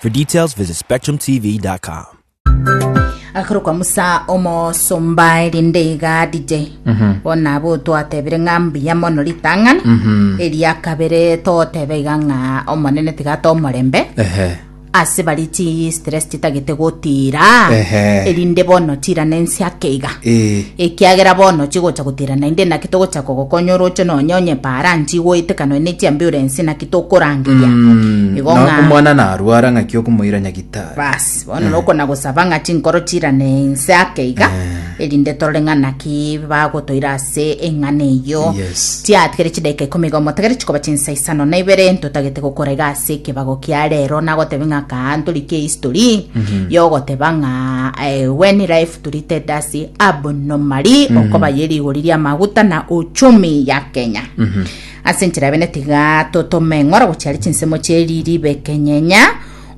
For details, visit spectrumtv.com. akarokwa musa omosomba erinde iga dj bona abo twatebire ng'a mbuya mono ritang'ani eria kabere totebe iga ng'a omonene tiga tomorembe Ehe. ase bari chi stress chitagete gotira Ehe. erinde bono tira nensi ake iga Eh. ekiagera bono chigocha gotira naende naki togocha kogokonya oroche nonye onye paranchi goetekanwe ne chiambiurensi naki tokorangeria Mm, igo na ng'a omwana narwara ng'aki okomoira nyagitari basi bono nokona gosaba ng'a chinkoro chirane inse ake iga erinde torore ng'a naki bagotoira ase eng'ana eyo Yes. tiatigere chidaika ikomi iga omotegere chikoba chinsa isano na ibere ntotagete gokora iga ase ekebago kia rero nagotebe ng'a kaa ntorikie history yogoteba ng'a eh, when life treated us abnormally okoba ye rigori ria maguta na uchumi ya kenya Ase enchera bende tiga totome ng'ora gochia are chinsemo chie riiri bekenyenya.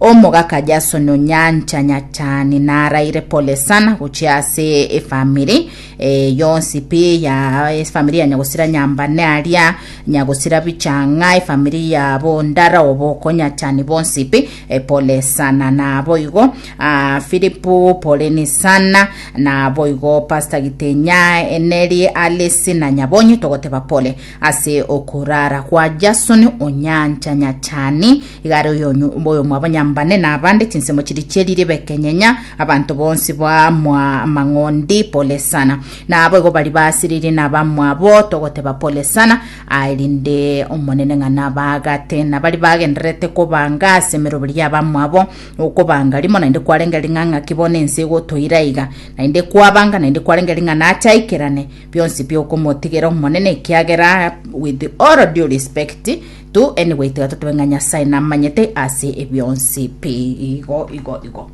Omogaka Jason Onyancha Nyachani naraire pole sana gochia ase efamiri eh, yonsi pi ya efamiri ya Nyagosira Nyambane aria Nyagosira Bichang'a efamiri ya Bondara Oboko Nyachani bonsi pi eh, pole sana nabo igo ah, Filipu poleni sana nabo igo Pastor Gitenya Eneri Alice na Nyabonyi togoteba pole Ase okoraara kwa Jasoni o nyancha nyachani, igare oyomwabonyambane nabande, chinsemo chiria chieri ribekenyenya, abanto bonsi bamwa amang'ondi, Pole sana. Naboigo baria baasiririe nabamwabo, togoteba Pole sana, aerinde Omonene ng'a nabaagate. Nabaria bagendererete kobanga ase emeroberi y'abamwabo, okobanga rimo naende kwarenge ring'ang'aki bono ense egotoira iga, naende kwabanga naende kwarenge ring'ana ache aikerane, Bionsi biokomotigera Omonene, ekiagera with all due respect to anyway tiga totobe ng'a Nyasae namanyete ase ebionsi pi igo igo igo.